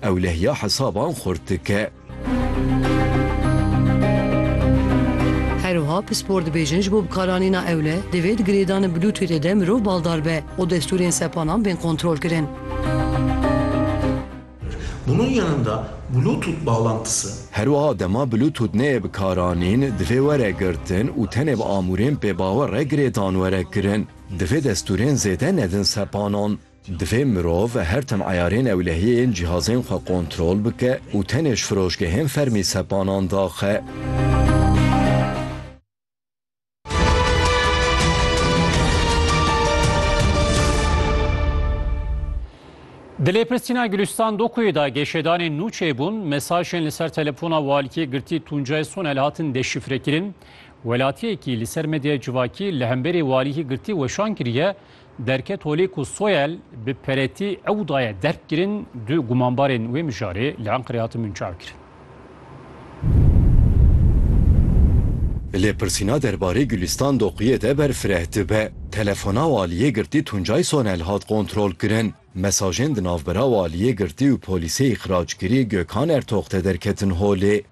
Ewlehiya hesaban xurt dike. Her wiha pispor dibêjin ji bo bikaranîna ewle divê di girêdanê Bluetoothê de mirov baldar be û destûrên sepanan bên kontrolkirin. Bunun yanında Bluetooth bağlantısı. Her wiha dema Bluetooth neyê bikaranîn divê were girtin û tenê bi amûrên pêbawer re girêdan were kirin. Divê destûrên zêde nedin sepanan. Divê mirov her tim eyarên ewlehiyê yên cihazên xwe kontrol bike û tenê ji firoşgehên fermî sepanan daxe. Di lêpirsîna Gulîstan Dokuyê de geşedanên nû çêbûn, mesajên li ser telefona walikiyê girtî Tuncay Sonel hatin deşîfrekirin. Welatiyekî li ser medyaya civakî li hemberî walikî girtî weşan kiriye, Derket holê ku Soyel bi peretî ew daye derk kirin, du gumanbarên wê mijarê li Enqerê hatin binçavkirin. Lêpirsîna derbarê Gulîstan Doquyê de ber fireh dibe. Telefona Waliyê Girtî Tuncay Sonel hat kontrolkirin. Mesajên di navbera Waliyê Girtî û Polîsê yê Qiraçkirî Gökhan Ertox de derketin holê.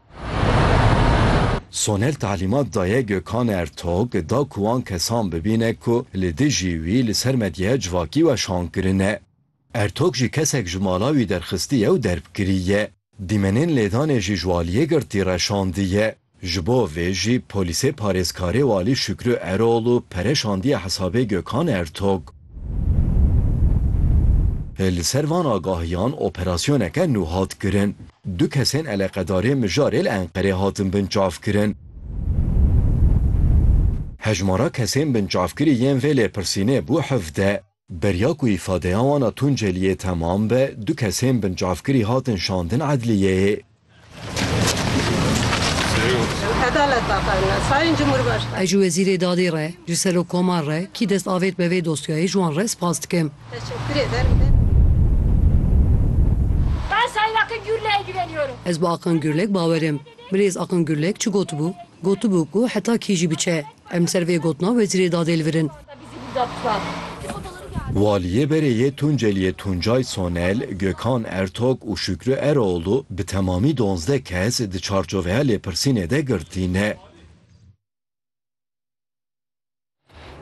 Soner talîmat daye Gökhan Ertox da ku wan kesan bibîne ku li dijî wî li ser medyaya civakî weşan kirine. Ertox jî kesek ji mala wî derxistiye û derbkiriye. Dîmenên lêdanê jî ji Waliyê Girtî reşandiye. Ji bo vê jî polîsê parêzkarê Walî Şükrü Eroğlu pere şandiye hesabê Gökhan Ertog. Li ser van agahiyan operasyoneke nû hat kirin. Du kesên eleqedarê mijarê li Enqerê hatin binçavkirin. Hejmara kesên binçavkirî yên vê lêpirsînê bû hevdeh. Beriya ku îfadeya wan a Tunceliyê temam be, du kesên bincavkirî hatin şandin edliyeyê. Ez ji Wezîrê Dadê re, ji Serokkomar re, kî dest avêt be vê dosyayê ji wan re spas dikim. Ez bi Akan Gurlek bawer im. Birêz Akan Gurlek çi gotibû? Gotibû ku heta kî jî biçe, Em li ser vê gotina Wezîrê Dadê li vir in. Waliyê berê yê Tunceliyê Tuncay Sonel, Gökhan Ertok û Şükrü Eroğlu bi temamî donzdeh kes di çarçoveya lêpirsînê de girtîne.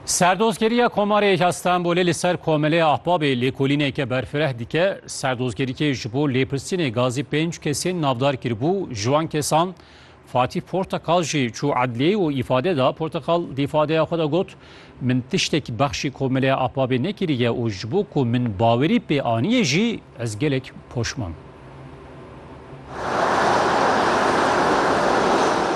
Serdozgeriya Komarê ya Stenbolê li ser Komelê Ahbabê lêkolîneke berfireh dike. Serdozgerîkê ji bo lêpirsînê gazî pênc kesên navdar kiribû, ji wan kesan Fatîh Portekal jî çû edliyeyê û îfade da. Portekal di îfadeya xwe de got, Min tiştek bexşî Komeleya Apabê nekiriye û ji bo ku min bawerî pê aniyê jî ez gelek poşman.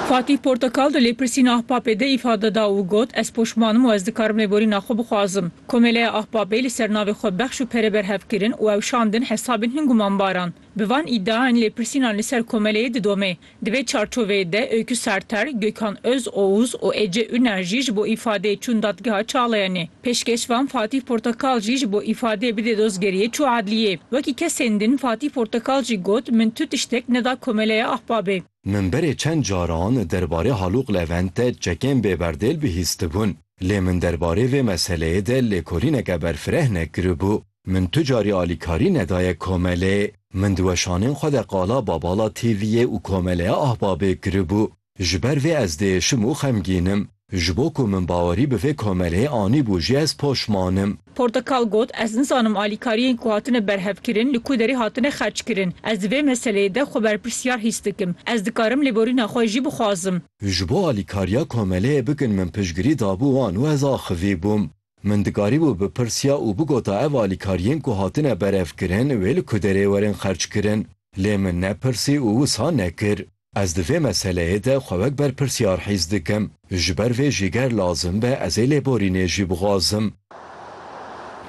Fatîh Portekal di lêpirsîna Ahpapê de îfade da û got, Ez poşman im û ez dikarim lêborîna xwe bixwazim. Komeleya Ahpapê li ser navê xwe bexş û pere berhev kirin û ew şandin hesabên hin gumanbaran. Bi van îdiayan lêpirsînan li ser komeleyê didome. Di vê çarçoveyê de Öykü Serter, Gökhan Özoğuz û Ece Üner jî ji bo îfadeyê çûn dadgeha Çağlayanê. Pêşkeşvan Fatîh Portakal jî ji bo îfadeyê bidê dozgeriyê çû adliyê. Wekî kesên din Fatîh Portakal jî got, Min tu tiştek neda komeleya Ahbabê. Min berê çend caran derbarê Halûq Levent de çekên bêberdêl bihîstibûn. Lê min derbarê vê meseleyê de lêkolîneke berfireh nekiribû. Min tu carî alîkarî nedaye komelê. Min di weşanên xwe de qala Babala TV'ê û Komeleya Ahbabê kiribû. Ji ber vê ez diêşim û xemgîn im. Ji bo ku min bawerî bi vê komeleyê anîbû jî ez poşman im. Portekal got, Ez nizanim alîkariyên ku hatine berhevkirin li ku derê hatine xerckirin. Ez di vê meseleyê de xwe berpirsiyar hîs dikim. Ez dikarim lêborîna xwe jî bixwazim. Ji bo alîkariya komeleyê bikin min piştgirî dabû wan û ez axivîbûm. Min dikarîbû bipirsiya û bigota ev alîkariyên ku hatine berevkirin wê li ku derê werin xerckirin. Lê min nepirsî û wisa nekir. Ez di vê meseleyê de xwe wek berpirsyar hîs dikim. Ji ber vê jî ger lazim be ez ê lêborînê jî bixwazim.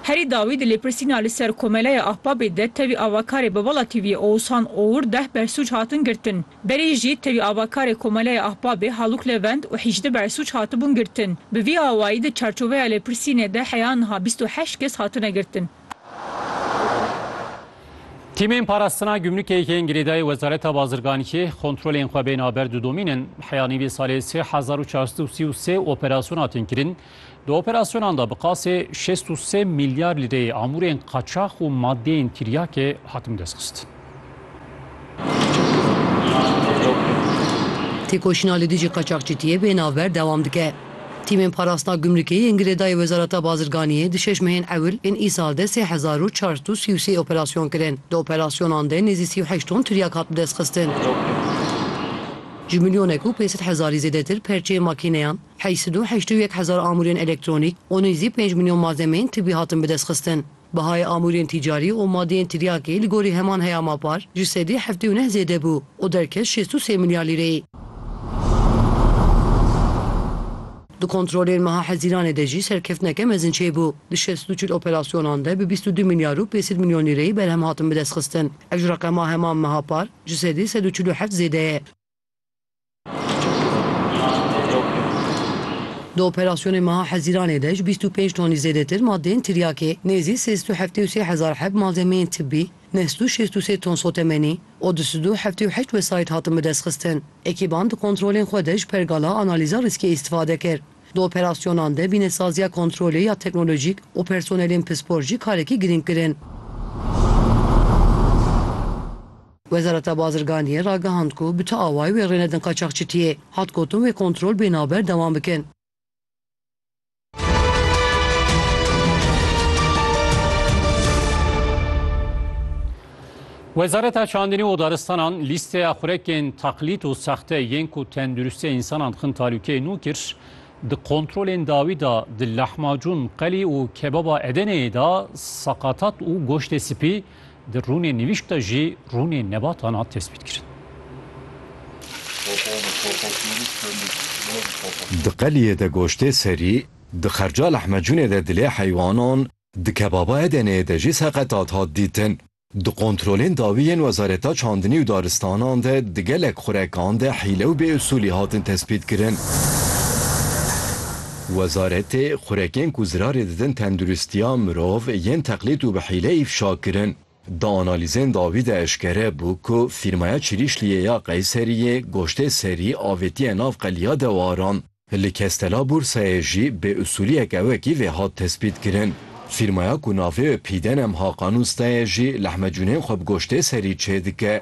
Herî dawî di lêpirsîna li ser Komeleya Ahbabê de tevî avakarê bi Vala TV'ê Oğuzhan Oğur deh bersûc hatin girtin. Berê jî tevî avakarê Komeleya Ahbabê Haluk Levent û Hicdi Bersuc hatibûn girtin. Bi vî awayî di çarçoveya lêpirsînê de heya niha bîst û heşt kes hatine girtin. Tîmên parastina gumrukê yên girêdayî Wezareta Bazirganîkê kontrolên xwe bên a ber didomînin. Heya nîvê salê sê hezar û çar sed û sî û sê operasyona tên kirin. Di operasyonan de bi qasê şêst û sê milyar lîreyê amûrên qaçax û madeyên tiryakê hatin destxistin. Têkoşîna li dijî qaçaxçitiyê bê navber dewam dike. Tîmên parastina gumrikê yên girêdayî Wezareta Bazirganiyê di şeş mehên ewil ên îsal de sê hezar û çar sed û sî û sê operasyon kirin. Di operasyonan de nêzî sî û heşt ton tiryak hat bidestxistin. Ji milyonek û pênc sed hezarî zêdetir perçeyên makîneyan, Heşt sed û heşt û yek hezar amûrên elektronîk û nêzî pênc milyon malzemeyên tibî hatin bidestxistin. Bihayê amûrên tîcarî û madeyên tiryakê li gorî heman heyama par ji sedî heftê û neh zêde bû û derket şêst û sê milyar lîreyê. Di kontrolên meha Hezîranê de jî serkeftineke mezin çêbû. Di şeş sed û çil operasyonan de bi bîst û du milyar û pêncî sed milyon lîreyê berhem hatin bidestxistin. Ev ji reqema heman meha par ji sedî sed û çil û heft zêde ye. Di operasyonên meha Hezîranê de ji bîst û pênc tonî zêdetir madeyên tiryakê, nêzî sê sed û heftê û sê hezar heb malzemeyên tibî, neh sed û şêst û sê ton sotemenî û du sed û heftê û heşt wesayît hatin bidestxistin. Ekîban di kontrolên xwe de ji pergala analîza rîskê îstifade kir. Di operasyonan de bînesaziya kontrolê ya teknolojîk û personelên pispor jî karekî girîng kirin. Wezareta Bazirganiyê ragihand ku bi tu awayî wê rênedin qaçaxçitiyê. Hat gotin wê kontrol bê navber dewam bikin. Wezareta Çandinî û Daristanan lîsteya xurekên teqlîd û sexte yên ku tenduristiya însanan dixin talûkeyê nû kir. Di kontrolên dawî de di Lehmacûn, Qelî û Kebaba Edeneyê de seqatat û goştê spî, Di rûnê nivîşk de jî rûnê nebatan hat tespîtkirin. Di qeliyê de goştê serî, di Xercal Ehmedcûnê de dilê heywanan, di kebaba Edeneyê de jî seqetat hat dîtin. Di kontrolên dawî yên Wezareta Çandinî û Daristanan de di gelek xurekan de hîle û bêusûlî hatin tespîtkirin. Wezaretê xurekên ku zirarê didin tenduristiya mirov yên teqlîd û bi hîle îfşa kirin. Di analîzên dawî de eşkere bû ku fîrmaya Çirîşliyê ya Qeyseriyê goştê serî avêtiye nav qeliya dewaran. Li Kestela Bursayê jî bê usûliyek ew wekî vê hat tespît kirin. Fîrmaya ku navê wê Pîden em Hakan Ustayê jî lehmecûnên xwe bi goştê serî çêdike.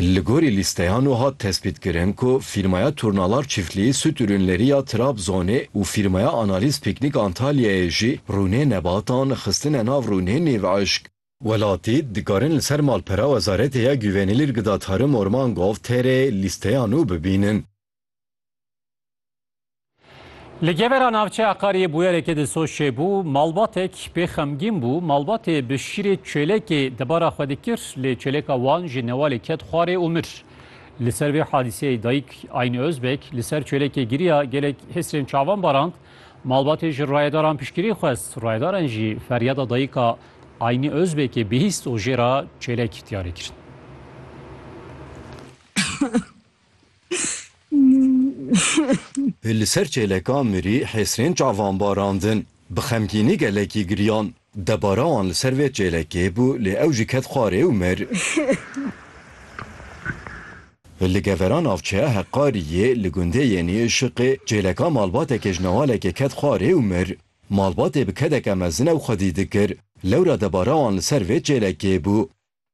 Li gorî lîsteyan wiha tespîtkirin ku fîrmaya Turnalar Çîftlî Süt Ürünleri ya Trabzonê û fîrmaya Analîz Pîknîk Antalyayê jî rûnê nebatan xistine nav rûnê nêv eşk. Welatî, dikarin li ser malpera Wezaretê ya Güvenilirgıda Tarım Orman Gov. Tr. lîsteya nû bibînin. Li gevera navçeya Qariyê bûyerekê di Soçê bû, malbatek pê xemgîn bû, malbatê bi şîrê çêlekê debara xwe dikir lê çêleka wan ji newalê ket xwarê û mir. Li ser vê hadîseyê dayik Ayn Ozbek li ser çêlekê giriya gelek hêsirên çavan barand, malbatê ji rayedaran piştgirî xwest, rayedaran jî feryada dayika Ayn Ozbekê bihîst û jê re çêlek diyarê kirin. Li ser çêleka mirî Hêsrên çavan barandin. Bi xemgînî gelekî giriyan. Debara wan li ser vê çêlekê bû lê ew jî ket xwarê û mir. Li gevera navçeya Heqqariyê li gundê Yênî Işiqê çêleka malbatekê ji newalekê ket xwarê û mir. Malbatê bi kedeke mezin ew xwedî dikir. Lewra debara wan li ser vê çêlekê bû.